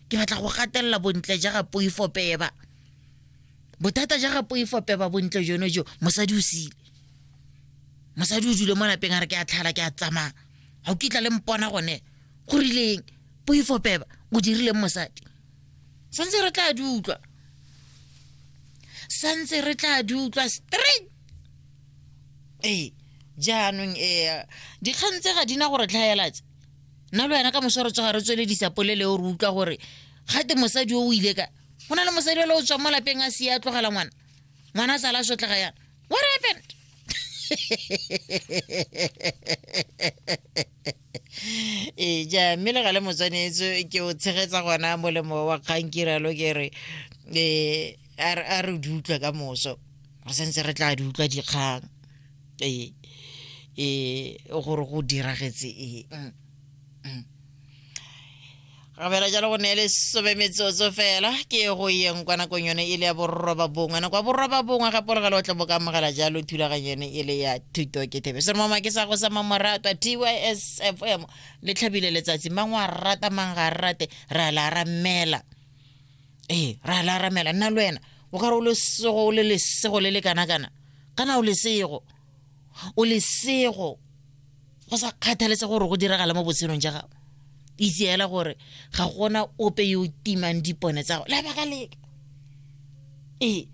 ke batla go gatelela bontle ja ga poifo peba bothata ja ga poifo peba bontle jono jo mosadi o sile mosadi o dule mo lapeng a re ke a tlhala ke a tsamaya ga o kitla le mpona gone go rileng poifo peba o dirileng mosadi santse re tla di utlwa santse re tla di utlwa straight ee jaanong ee dikgang tse ga di na gore tlhaelatse nna le wena ka moso re tsoga re tsweledisa polele o re utlwa gore ga te mosadi o o ile ka go na le mosadi ole o tswa mo lapeng a sia a tlogela ngwana ngwana a tsala a sotlega yana what happened ee ja mme le ga le motswanetse ke o tshegetsa gona molemo wa kgang ke ralo ke re um a re di utlwa ka moso re santse re tla di utlwa dikgang e e gore go diragetse e mm, mm. gabela jalo go ne le some metsotso fela ke go yeng kwa nakong yone e le ya borroba bongwe nako ya borroba bongwe gape le gale o tla bo ka amogela jalo thulaganyo yone e le ya thuto ke thebe se re mama ke sa go sa mamoratwa tys f m le tlhabile letsatsi mang wa rata mang ga a rate ra la ra mmela ee ra la ramela nna le wena o ka re o lesego o le lesego le le kana-kana kana o lesego o lesego go sa kgathalese gore go diragala mo botshelong ja gago itse fela gore ga gona ope yo o timang dipone tsa gago lebaka leka ee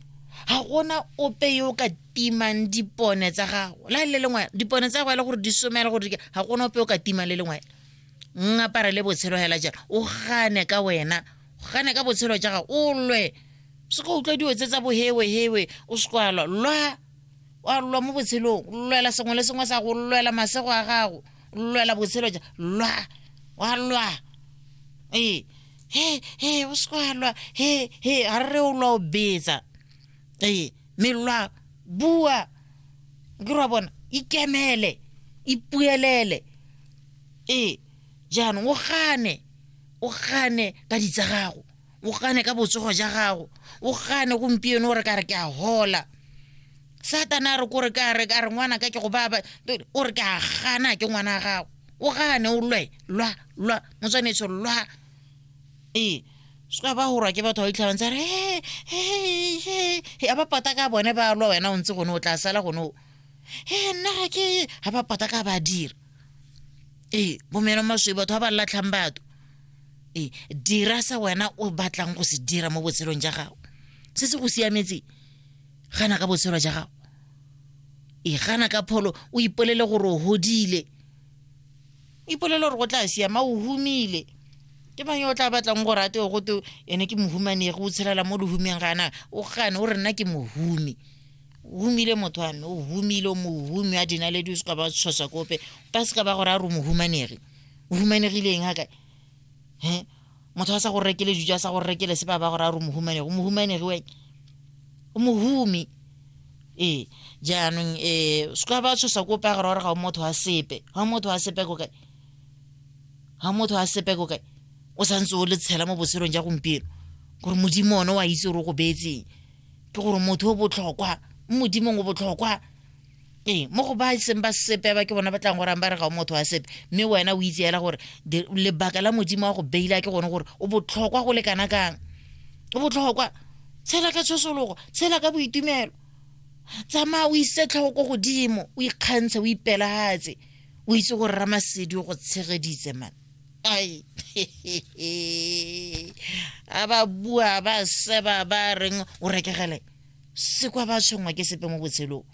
ga gona ope yo o ka timang dipone tsa gago la le lengwe dipone tsa gago e le gore di somela gore ga gona ope o ka timang le lengwe ngapare le botshelo fela jalo o gane ka wena go gane ka botshelo jaga o lwe se ka utlwa dio tse tsa bohewehewe o se kwa lwa lwa wa lwa mo botshelong lwela sengwe le sengwe sa go lwela masego a gago lwela botshelo ja lwa wa lwa ee he he o se kwa lwa he he ga re o lwa o betsa ee mme lwa bua ke ra bona ikemele ipuelele ee jaanong o gane o gane ka ditsa gago o gane ka botsogo ja gago o gane gompieno gore ka re ke a hola satana a re kore ka re ka re ngwana ka ke go baba o re ke a gana ke ngwana gago o gane o lwe lwa lwa motswanetso lwa ee seka ba gorwa ke batho ba itlhabang tsa re a ba pata ka bone ba lwa wena o ntse gone o tla sala gone o e nna ga ke ga ba pata ka ba dira ee bomeno maswi batho ba ba latlhang batho ee dira se wena o batlang go se dira mo botshelong ja gago se se go siametse gana ka botshelo ja gago ee gana ka pholo o ipolele gore o godile o ipolele gore go tla siama o humile ke mang yo o tla batlang gore a teo go teo ene ke mohumanegi o tshelela mo lehumeng gana o gane o re nna ke mohumi o humile motho wa me o humile o mohumi a dinaledi o se ka ba tshosa kope ba se ka ba gore a re o mohumanegi o humanegileng ga kae he motho a sa go rekele dijo a sa go rekele se ba ba gore a re o mohumanegi o mohumanegi weng o mohumi ee jaanong um eh, se ka ba tshosa kope a gore gore ga o motho wa sepe ga o motho wa sepe ko kae ga motho a sepe ko kae o santse o le tshela mo botshelong ja gompieno gore modimo one wa itse gore o go beetseng ke gore motho o botlhokwa modimong o botlhokwa ee mo go ba seng ba sepe ba ke bona ba tlang gorang ba re ga o motho wa sepe mme wena o itse fela gore lebaka la modimo wa go beila ke gone gore o botlhokwa go lekana kang o botlhokwa tshela ka tshosologo tshela ka boitumelo tsamaya o ise tlhogo ko godimo o ikgantshe o ipelagatse o itse gore ramasedi o go tshegeditse mane ai a ba bua ba seba ba reng o rekegele se kwa ba tshwenngwa ke sepe mo botshelong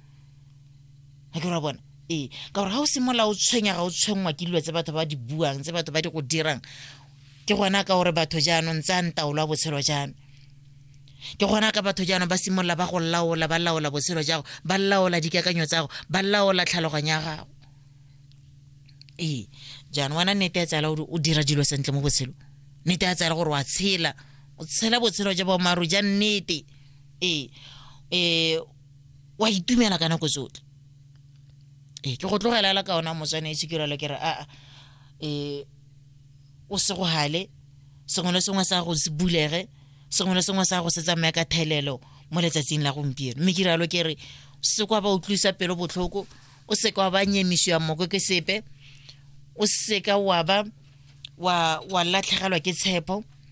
a ke ra bona ee ka gore ga o simolola o tshwenya ga o tshwenngwa ke dilo tse batho ba di buang tse batho ba di go dirang ke gona ka gore batho jaanong tsa ntaolo ya botshelo jaanong ke gona ka batho jaanong ba simolola ba go laola ba laola botshelo jago ba laola dikakanyo tsago ba laola tlhaloganyo ya gago ee jaanong wena nnete ya tsala gore o dira dilo sentle mo botshelo nnete ya tsala gore wa tshela o tshela botshelo ja boammaaruri ja nnete ee ee wa itumela ka nako tsotlhe ee ke go tlogelela ka ona motswana e sekirelo ke re aa ee o se go hale sengwe le sengwe sa go se bulege sengwe le sengwe sa go se tsamaya ka thelelo mo letsatsing la gompieno mme ke rialo ke re se kwa ba utlwisa pelo botlhoko o seka wa ba nyemisiwa moko ke sepe o seka wa ba wa wa latlhegelwa ke tshepo